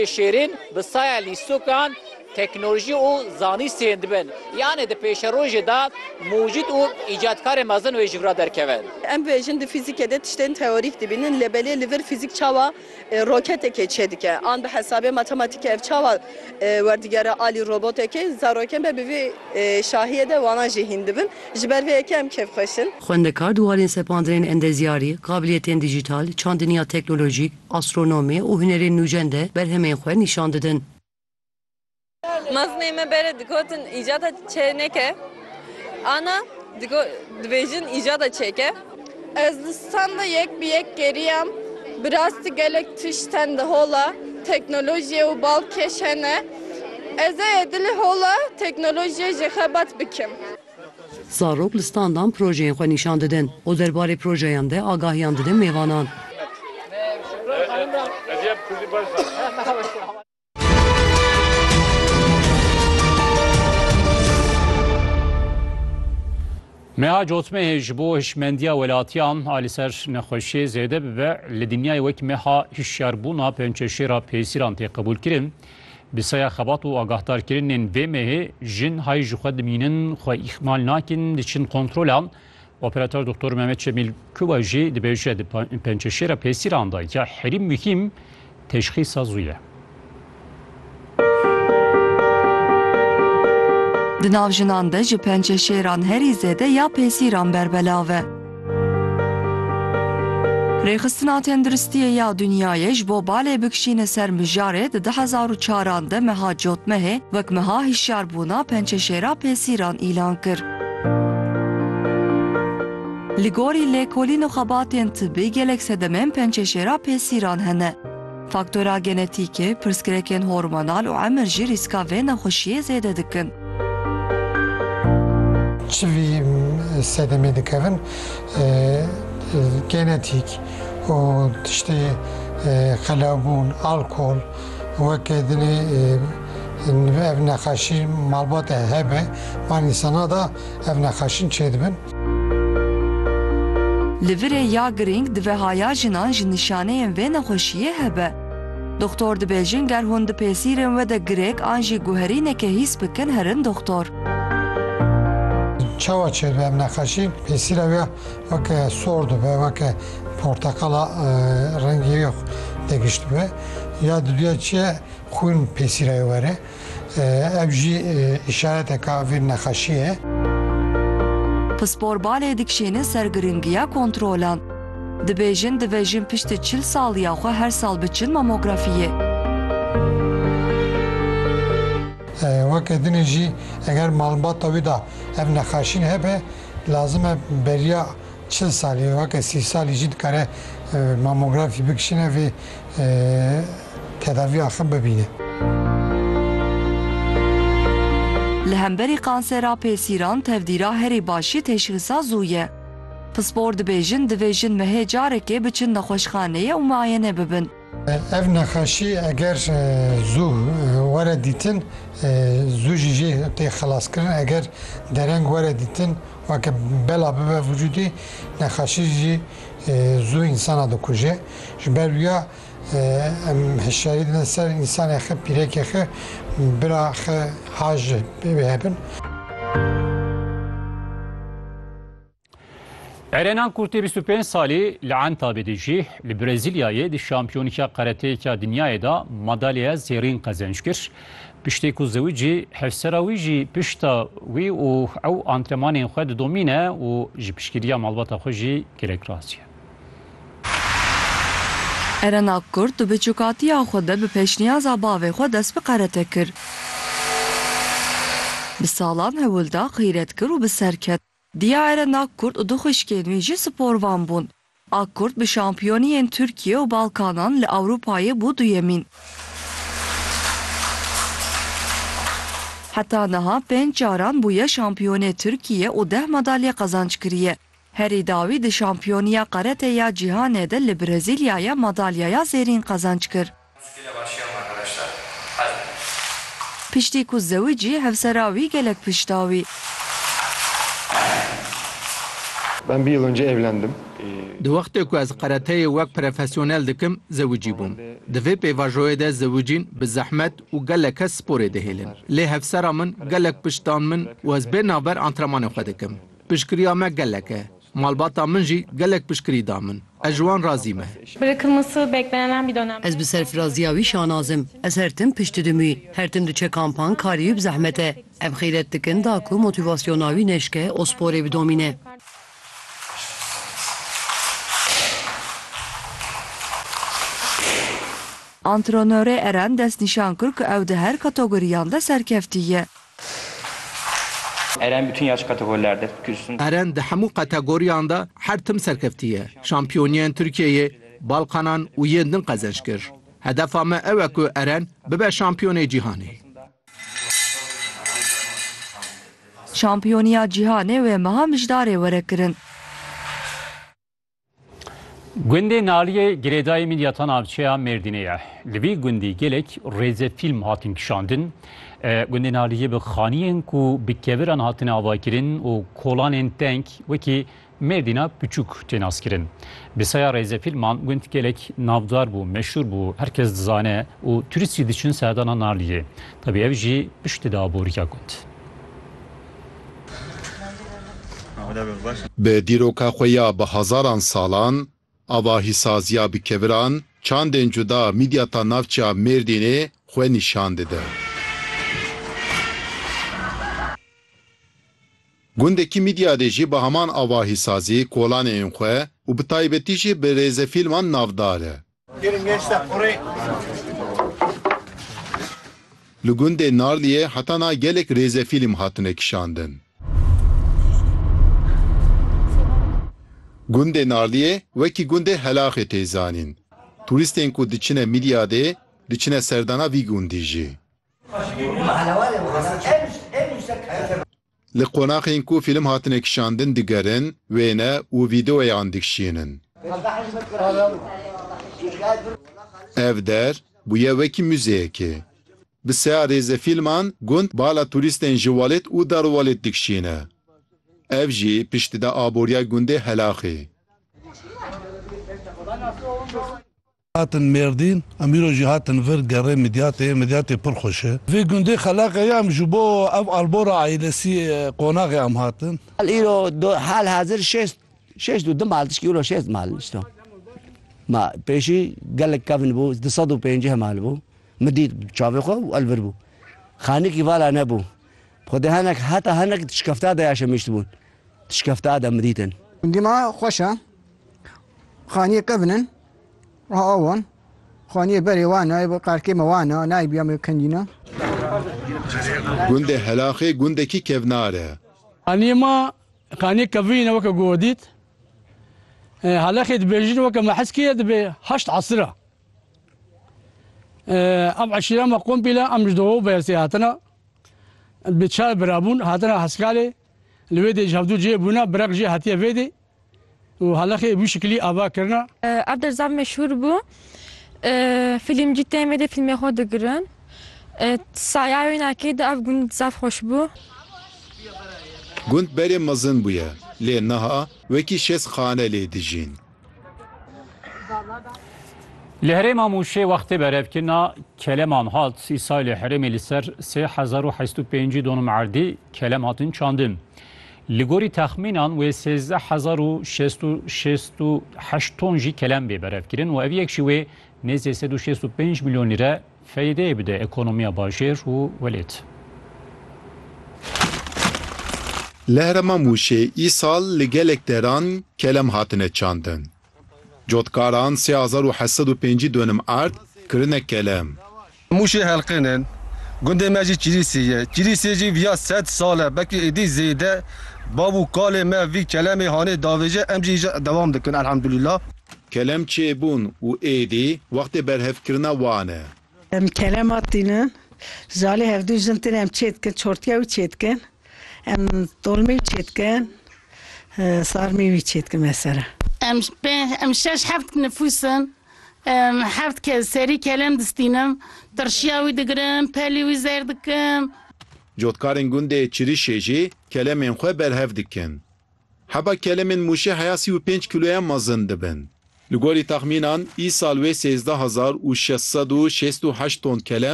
Şêrîn bi saya lîstokan, teknolojî û zanîst sêyên dibin. Yanê di pêşerojê de mûcîd û îcatkarên mezin wê ji vir re derkevin. Em bêjin di fîzîkê de tiştên teorîk dibînin lê belê li vir fîzîk çawa roketekê çêdike an bi hesabê matematîkê ev çawa werdigere alî robotekê. Zarokên be bi vî şahiyê de wanan jî hîn dibin. Ji ber vê yekê em kêfxweş in. Xwendekar di warên sepandirên endezyarî, qabiliyetên dîjîtal, çandiniya teknolojîk, Astronomê û hunerên nûcen de berhemên xwe nîşan didin. Mezinê me berê digotin îcada çênek e. Ana dibêjin îcada çêk e. Ez li standa yek bi yek geriyam. Bi rastî gelek tişt tên di hola teknolojiyê û balkêş hene. Ez ê dilê hola teknolojiyê jê xebat bikim. Zarok li standan projeyên xwe nîşan didin û derbarê projeyan de agahiyan didin mêvanan. Meha cotmehê ji bo hişmendiya welatiyan a li ser nexweşiyê zêde bibe, li dinyayê wek meha hişyarbûna pençeşêra pêsîran tê qebûlkirin. Bi saya xebat û agahdarkirinên vê mehê jin hay ji xwe dimînin, xwe îhmal nakin, diçin kontrolan. Operator Doktor Mehmet Şemîl Kuba jî dibêje di pençeşêra pêsîran de ya herî muhîm teşxîsa zû ye. Di nav jinan de ji pençeşêran herî zêde ya pêsîran berbelav e. Rêxistina Tendiristiyê ya Dunyayê ji bo balê bikişîne ser mijarê di du hezar û çaran de meha cotmehê wek meha hişyarbûna pençeşêra pêsîran îlan kir. Li gorî lêkolîn û xebatên tibî gelek sedemên pençeşêra pêsîran hene. Faktora genetîkê, pirsgirêkên hormonal û emir jî rîska vê nexweşiyê zêde dikin. Çivî sedemê dikevin genetîk û tiştê qelewbûn, alkol wek dinê ev nexweşî malbate hebe van însana de. ev nexaşîn çêdibin. Li virê ya girîng dive haya jinan ji nîşaneyên vê nexweşiyê hebe. Doxtor dibêjin ger hûn di pêsîrên we de girêk an jî guherîneke hîs bikin herin doxtor. Çawa çêdibe ev nexaşîn? Pêsîra wê weke sor dibe, weke porteqala rengî wê de gişt dibe. Ya di duya çi ye xwîn pêsîra wê were. Ev jî îşareteke a vîr nexaşiyê. Pispor balê dikişêne ser giringiya kontrolan. Dibêjin divê jin piştî çil saliya xwe her sal biçin mamografiyê. Weke din e jî eger malbata wî de ev nexaşîn hebe lazim e beriya çil salî weke sî salî jî dikare mamografî bikişîne vê tedaviya xwe bibîne. Li hemberî kansera pêsîran tevdîra herî başî teşhîsa zû ye. Pispor dibêjin divê jin mehê carekê biçin nexweşxaneyê û miayene bibin. Ev nexweşî eger zû were dîtin zû jî jê tê xelaskirin eger dereng were dîtin weke bela bibe vijûdê nexweşî jî Zû însana dikuje. Ji ber wiya em hişyarî didin ser însanê xwe, pîrekê xwe, bira xwe ha ji wê hebin. Erenan Kurtê bîst û pênc salî li Entabê de jî li Brezîlyayê di şampiyonîka qereteyêka dinyayê de madalyeya zêrîn qezenc kir. Piştî ku ziwicî hevsera wî jî pişta wî û ew antrenmanên xwe didomîne û ji piştgiriya malbata xwe jî girek razî ye. Eren Akkurt di biçûkatiya xwe de bi pêşniyaza bavê xwe dest bi qerete kir. Bi salam hewil da, qîret kir û bi ser ket. Diya Eren Akkurt û du xwişkên wî jî sporvan bûn. Akkurt bi şampiyoniyên Tirkiye û Balkanan li Ewropayê bû duyemîn. Heta niha pênc caran bûye şampiyonê Tirkiye û deh madalye qezanc kiriye. Herî dawî di şampiyoniya Karate ya Cîhanê de li Brezîlyayê madalyaya zêrîn qezanc kir. Muskile var şiyam arkadaşlar. Hadi. Piştî ku zewicî hevsera wî gelek pişta wî. Ben bir yıl önce evlendim. Di wextê ku ez karateyê wek prefesyonel dikim zewicî bûm. Di vê pêvajoyê de zewicîn bi zehmet û gelek kes sporê dihêlin. Lê hevsera min gelek pişt dan min û ez bê navber antrenmanê xwe dikim. Piştgiriya me gelek e. Malbata min jî gelek piştgirî da min. Ez ji wan razî me. Biri kırmızı beklenenen bir dönemde. Ez bi serfiraziya wî şanaz im. Ez her tim pişt didim wî. Her tim diçe kampan, karî û bi zehmet e. Em xîret dikin da ku motîvasyona wî neşke û sporê bidomîne. Antrenörê Eren destnîşan kir ku ew di her kategoriyan de serkeftî ye. Eren bütün yaş kategorilerde kürsün. Eren di hemû kategoriyan de her tim serkeftiye. Şampiyoniyên Tirkiyeyê, Balkanan û yên din qezenç kir. Hedefa me ew e ku Eren bibe şampiyonê cîhanê. Şampiyoniya cîhanê wê meha mijdarê were kirin. Gundê Naliyê girêdayê mîdyata navçeya Mêrdînê ye. Li vî gundî gelek rêzefîlm hatin kişandin. Gundê Naliyê bi xaniyên ku bi keviran hatine avakirin û kolanên teng wekî Mêrdîna piçûk tê naskirin. Bi saya rêzefîlman gund gelek navdar bû, meşhûr bû, her kes dizane û turîst jî diçin serdana Naliyê. Tevî ev jî piştî de aborîya gund. Bi dîroka xwe ya bi hezaran salan, avahîsaziya bi keviran, çandên cuda mîdyata navçeya Mêrdînê xwe nîşan dide. Gundekî mîdyadê jî bi heman avahîsazî kolanê ên xwe û bi taybetî jî bi rêzefîlman navdar e. Li gundê Narliyê heta na gelek rêzefîlm hatine kişandin. Gundê Narliyê wekî gundê Helaxê tê zanîn. Turîstên ku diçine Mîlyadê, diçine serdana vî gundî jî. Li qonaxên ku fîlm hatine kişandin digerin, wêne û vîdeoyan dikişînin. Ev der bûye wekî muzeyekê. Bi seya rêzefîlman gund bala turîstên ji Walêt û Darwalêt dikişîne. Ev jî pişt dide aboriya gundê Helaxê. Hatin Mêrdîn, em îro jî hatin vir gerê Midyatê, Midyatê pir xweş e. Vê gundê Xelaqê ye em ji bo ev albora aîlesî qonaxê em hatin. Hal îro do hal hazir şêst şêst û du mal tişkî îro şêst mal nişto. Ma pêşî gelek kevn bû du sed û pênceh mal bû. Min dît bi çavê xwe û elbir bû. Xanîkî vala nebû. Bi xwedê henek heta henek tişkefta de yaşemiştibûn. Tişkefta de min dîtin. Dîma xweş e. Xanîyê kevn in. Aha awan. Xaniyê berê wan e, bu qarkê me wan e, nayê biya me kendîna. Gundê Helaxê gundekî kevnar e. Xaniyê ma xaniyê kevîn e weke ku we dît. Helaxê dibêjin weke me hes kiriye dibe heşt esir e. Ev eşîra me kompîle em ji Doho Beyazê hatine. Dibe çar bira bûn, hatine Heskalê. Li wê dê ji hevdu cihê bûne, birek jî hetiye vê dê. û halexê bi wî şikilî ava kirina. Ev der zaf meşhûr bû. Filmcî tên vê dê filmê xwe digirin. Saya wênakê de ev gund zaf xweş bû. Gund berê mezin bûye lê niha wekî şêst xane lê dijîn. Li herêma Mûşê wextê berevkirina keleman hat Îsay li herêmê li ser sê hezar û heşt û pêncî donum erdî kelem hatin çandin. Li gorî texmînan wê sêzdeh hezar û şêst û şêst û heşt ton jî kelem bê berevkirin û ev yek jî wê nêzê sed û şêst û pênc milyon lîre feyedeyê bide ekonomiya bajêr û welêt. Li herêma Mûşê îsal li gelek deran kelem hatine çandin. Cotkaran sê hezar û heşt sed û pêncî dönim erd kirine kele. Mûşê Helqên in. Gundê me jî Kîlîsê ye. Kîlîsê jî viya sed sal e, belkî êdî zêde. Bav û kalê me vî kelemê hanê davêje, em jî îja dewam dikin elhamdulîla. Kelem çêbûn û êdî wextê berhevkirina wan e. Em kelema tînin. Zalê hevdu jin tînin em çê dikin, çortiya wî çê dikin. Em dolmê wî çêdikin, sarmê wî çêdikin me ser e. Em pênc, em şeş heft nifûs in. Em heft kes serî kelem distînim. Tirşiya wî digirim, pelê wî zer dikim. Cotkarên gundê Çirişê jî kelemên xwe berhev dikin. Heba kelemên Mûşê heya sî û pênc kîloyan mezin dibin. Li gorî texmînan îsal wê sêzdeh hezar û şeş sed û şêst û heşt ton kelem